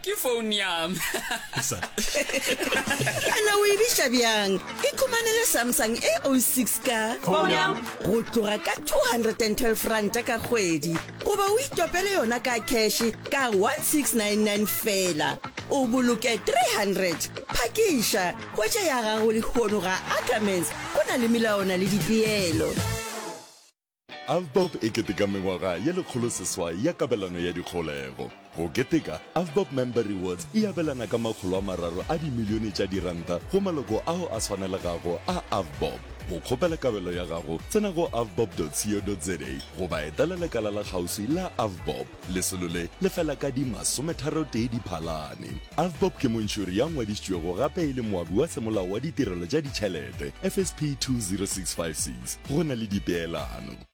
ke phone yam ana o e biša bjang ikhumanele samsung a 06 ka go tloga ka 212 ranta ka kgwedi goba o itopele yona ka kheshe ka 1699 fela o boloke 300 phakiša kwetša ya gago lehono ga ackermans go na le melawana le dipeelo Avbob e keteka mengwaga ye lekgolo seswai ya kabelano ya dikgolego. Go keteka, Avbob Member Rewards e abelana ka makgolo a mararo a dimilione tša diranta go maloko ao a swanelegago a Avbob. Go kgopela kabelo ya gago, tsena go avbob.co.za goba etela lekala la kgauswi la Avbob. Lesolo le le fela ka di masometharotee Diphalane. Avbob ke montšhori ya ngwadišitšwego gape e le moabi wa Semolao wa Ditirelo tša Ditšhelete, FSP 20656, go na le dipeelano.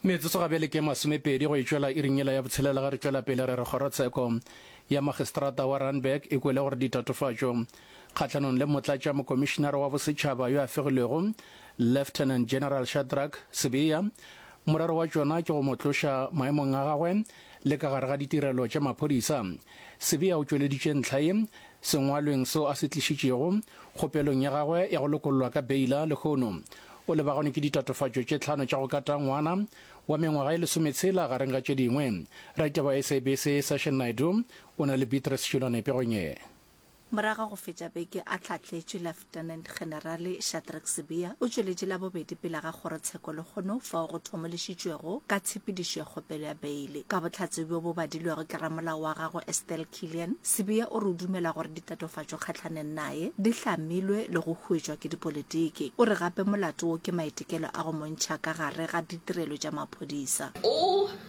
Metsotso ga bjale ke e masomepedi go e tšwela iring yela ya botshelela ge re tšwela pele re re Kgorotsheko ya Magistrata wa Randburg e kwele gore ditatofatšo kgahlanong le Motlatša Mokomišinare wa Bosetšhaba yo a fegilwego Lieutenant General Shadrack Sibiya Morero wa tšona ke go mo tloša maemong a gagwe le ka gare ga ditirelo tša maphodisa. Sibiya o tšweleditše ntlha ye sengwalweng seo a se tlišitšego kgopelong ya gagwe ya go lokollwa ka beila lehono o lebagane ke ditatofatšo tše tlhano tša go kata ngwana wa mengwaga e lesometshela gareng ga tše dingwe. Raditaba wa SABC Session Naidoo o na le Beatrice Shilwane pegong ye. Morago ga go fetša beke a tlhatletše, Lieutenant Generale Shadrack Sibiya o tšweletše Labobedi pele ga kgorotsheko lehono fao go thomološitšwego ka tshepedišo ya kgopelo ya beile. Ka bohlatse bjo bo badilwego ke ramolao wa gagwe Estelle Killian, Sibiya o re o dumela gore ditatofatšo kgahlaneng naye di hlamilwe le go huetšwa ke dipolitiki. O re gape molato wo ke maitekelo a go mo ntšha ka gare ga ditirelo tša maphodisa. O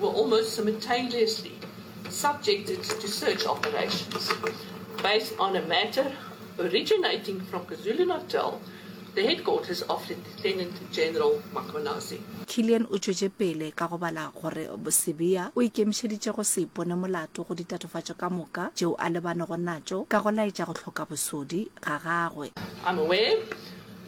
were almost simultaneously subjected to search operations. Based on a matter originating from KwaZulu-Natal, the headquarters of Lieutenant General Makonazi. Killian o tšwetše pele ka go bala gore Sibiya o ikemišeditše go se ipone molato go ditatofatšo ka moka tšeo a lebanego natšo ka go laetša go hloka bosodi ga gagwe. I'm aware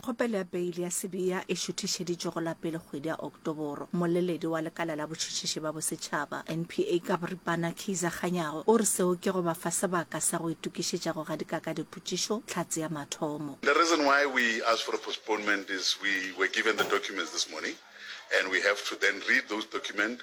Kgopelo ya beili ya Sibiya e šuthišeditšwe go la pele kgwedi ya Oktoboro. Mmoleledi wa Lekala la Botšhotšhiši ba Bosetšhaba, NPA, ka boripana, Keizer Kganyago, o re seo ke go ba fa sebaka sa go itokišetša go gadika ka dipotšišo Tlhatse ya mathomo. The reason why we asked for a postponement is we were given the documents this morning and we have to then read those documents.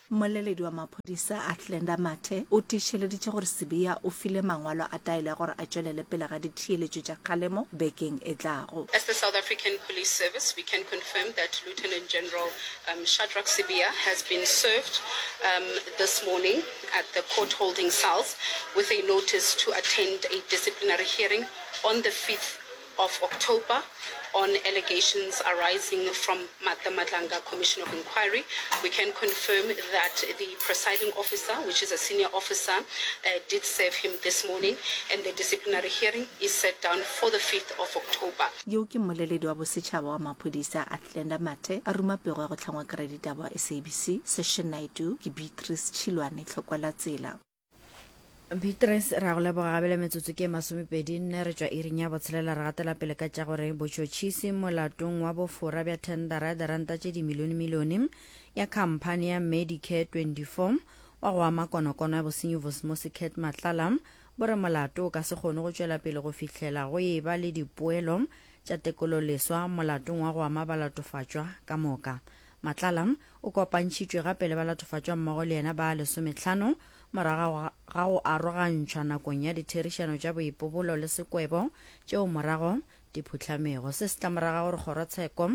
Mmoleledi wa maphodisa Athlenda Mathe o tiišeleditše gore Sibiya o file mangwalo a taelo ya gore a tšwelele pele ga ditheeletšo tša kgalemo bekeng e tlago. As the South African Police Service, we can confirm that Lieutenant General um, Shadrack Sibiya has been served um, this morning at the court holding cells with a notice to attend a disciplinary hearing on the 5th of October on allegations arising from Martha Matlanga Commission of Inquiry, we can confirm that the presiding officer, which is a senior officer, uh, did serve him this morning and the disciplinary hearing is set down for the 5th of October. Yo ke mmoleledi wa bosetšhaba wa maphodisa Athlenda Mathe a ruma pego ya go tlhangwa kry ditaba wa SABC Session Naidoo ke Beatrice Tšhilwane Tlhokwelatsela. beatrice ra go leboga gabele metsotso ke masomepedi nne re tšwa iring ya botshelela re gatela pele ka tša gore botšhotšhisi molatong wa bofora bja thendara ya diranta tše dimilionemilione ya khamphane ya medicare 24 wa go ama konokono ya bosenyi vosmosi cat matlala bo re molato o ka se kgone go tšwela pele go fihlela go e ba le dipoelo tša tekololeswa molatong wa go ama balatofatšwa ka moka matlala O kopantšhitšwe gape le balatofatšwammogo le yena ba lesometlhano morago ga go arogantšhwa nakong ya ditherišano tša boipobolo le sekwebo tšeo morago di phuhlamego. Se se tla morago ga gore kgorotsheko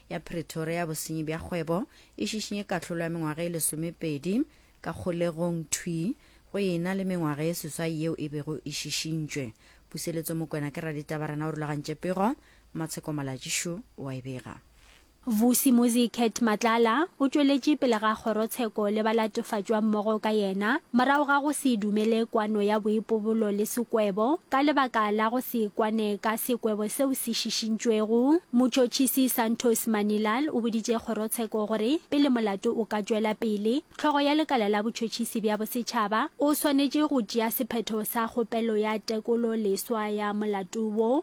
ya Pretoria ya bosenyi bja kgwebo e šišinye kahlolo ya mengwaga e lesomepedi ka kgolegong thwi go e na le mengwaga ye seswai yeo e bego e šišintšwe. Puseletso Mokwena ke raditabarena o rulagantše pego, Matsheko Malatjišu o a e bega. Vusi Muzicat Matlala o tšweletše pele ga kgorotsheko le ba latofatšwang mmogo ka yena morago ga go se dumele kwano ya boipobolo le sekwebo ka lebaka la go se kwane ka sekwebo seo se šišintšwego. Mutšhotšhisi Santos Manilal o boditše kgorotsheko gore pele molato o ka tšwela pele, hlogo ya lekala la botšhotšhisi bja bosetšhaba o swanetše go tšea sephetho sa kgopelo ya tekolo leswa ya molato wo.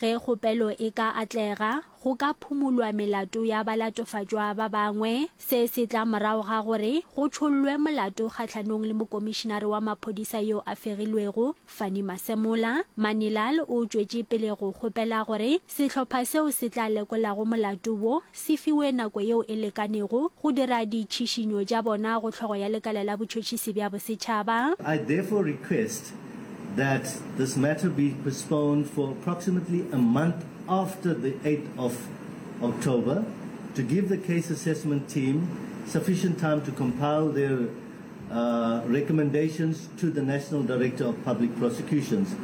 Ge kgopelo e ka atlega, go ka phumolwa melato ya balatofatšwa ba bangwe. Se se tla morago ga gore go tšhollwe molato kgahlanong le mokomišinare wa maphodisa yo a fegilwego, Fannie Masemola. Manilal o tšwetše pele go kgopela gore Sehlopha seo se tla lekolago molato wo se fiwe nako yeo e lekanego go dira ditšhišinyo tša bona go Hlogo ya Lekala la Botšhotšhisi bja Bosetšhaba. I therefore request that this matter be postponed for approximately a month after the eighth of October to give the Case Assessment Team sufficient time to compile their Recommendations to the National Director of Public Prosecutions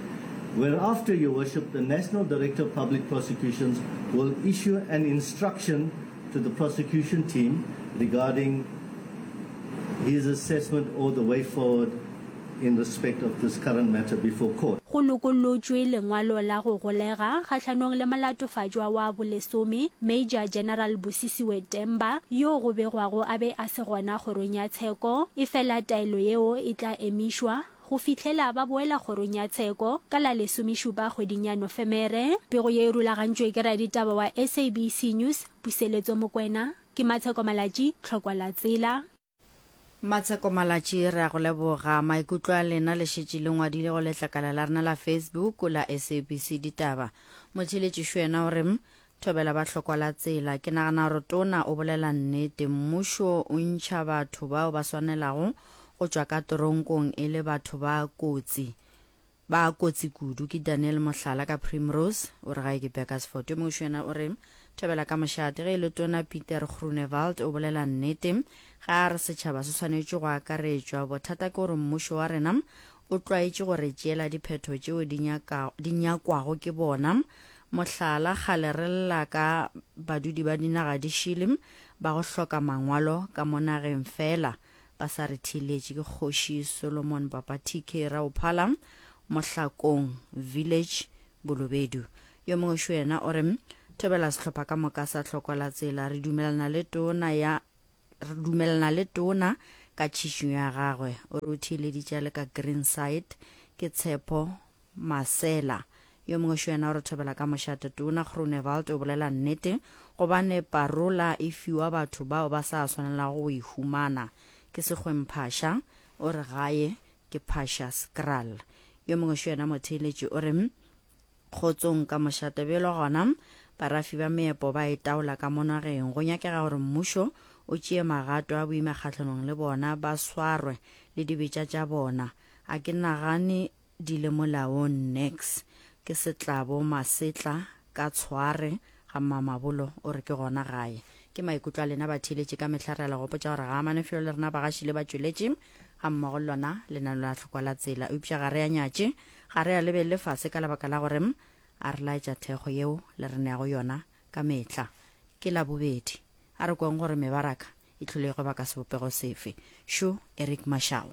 Whereafter, Your Worship, the National Director of Public Prosecutions will issue an instruction to the prosecution team regarding his assessment or the way forward in respect of this current matter before court. Go lokollotšwe lengwalo la go golega kgahlanong le molatofatšwa wa bolesome, Major General Busisiwe Temba, yo go begwago a be a Se gona kgorong ya tsheko, efela taelo yeo e tla emišwa go fihlela ba boela kgorong ya tsheko ka la lesomešupa kgweding ya Nofemere. Pego ye e rulagantšwe ke raditaba wa SABC News, Puseletso Mokwena. Ke Matsheko Malatji, Tlhokwa la Tsela. Matsheko Malatji, re a go leboga. Maikutlo a lena le šetše le ngwadile go letlakala la rena la Facebook la SABC Ditaba. Motheeletši Šwena o re, Thobela ba hlokwa la tsela. Ke nagana gore tona o bolela nnete. Mmušo o ntšha batho bao ba swanelago go tšwa ka toronkong e le batho ba kotsi. Ba kotsi kudu. Ke Daniel Mohlala ka Primrose. O re gae ke Bekersford. Yo mongwe šoena o re, Thobela ka mošate. Ge e le tona Pieter Groenewald o bolela nnete ge a re setšhaba se swanetše go akaretšwa. Bothata ke gore mmušo wa rena o tlwaetše go re tšeela diphetho tšeo di nyakwago ke bona Mohlala, kgale re lla ka badudi ba dinaga di šele ba go hloka mangwalo ka mo nageng fela ba sa re theeletše. Ke Kgoši Solomon Papa TK Raophala, Mohlakong Village, Bolobedu. Yo mongwe šo yena o re, Thobela sehlopha ka moka sa Hlokwalatsela. Re dumelana le tona ya re dumelana le tona ka tšhišinyo ya gagwe. O re o theeleditše a le ka Greenside. Ke Tshepo Masela. Yo mongwe šo yena o re thobela ka mošate. Tona Groenewald o bolela nnete gobane parola e fiwa batho bao ba sa swanelago go e humana. Ke Sekgweng Phasha o re gae ke Phasha's kraal. Yo mongwe šo yena Motheeletši o re, Kgotsong ka mošate bjelo gona barafi ba meepo ba e taola ka mo nageng. Go nyakega gore mmušo o tšee magato a boima kgahlanong le bona, ba swarwe le dibetša tša bona. A ke nagane di le molaong nix ke setlabo masetla ka tshware ga mmamabolo o re ke gona gae ke maikutlo a lena batheeletši ka mehla re a le gopotša gore ga amane felo le rena bagaši le batšweletši ga mmogo le lona le na la tlhokwa la tsela eupša ga re a nyatše ga re a lebelele fase ka lebaka la gore a re laetša thekgo yeo le re neago yona ka mehla ke la bobedi a re kweng gore mebaraka e tlholegwe ba ka sebopego sefe sho eric mashao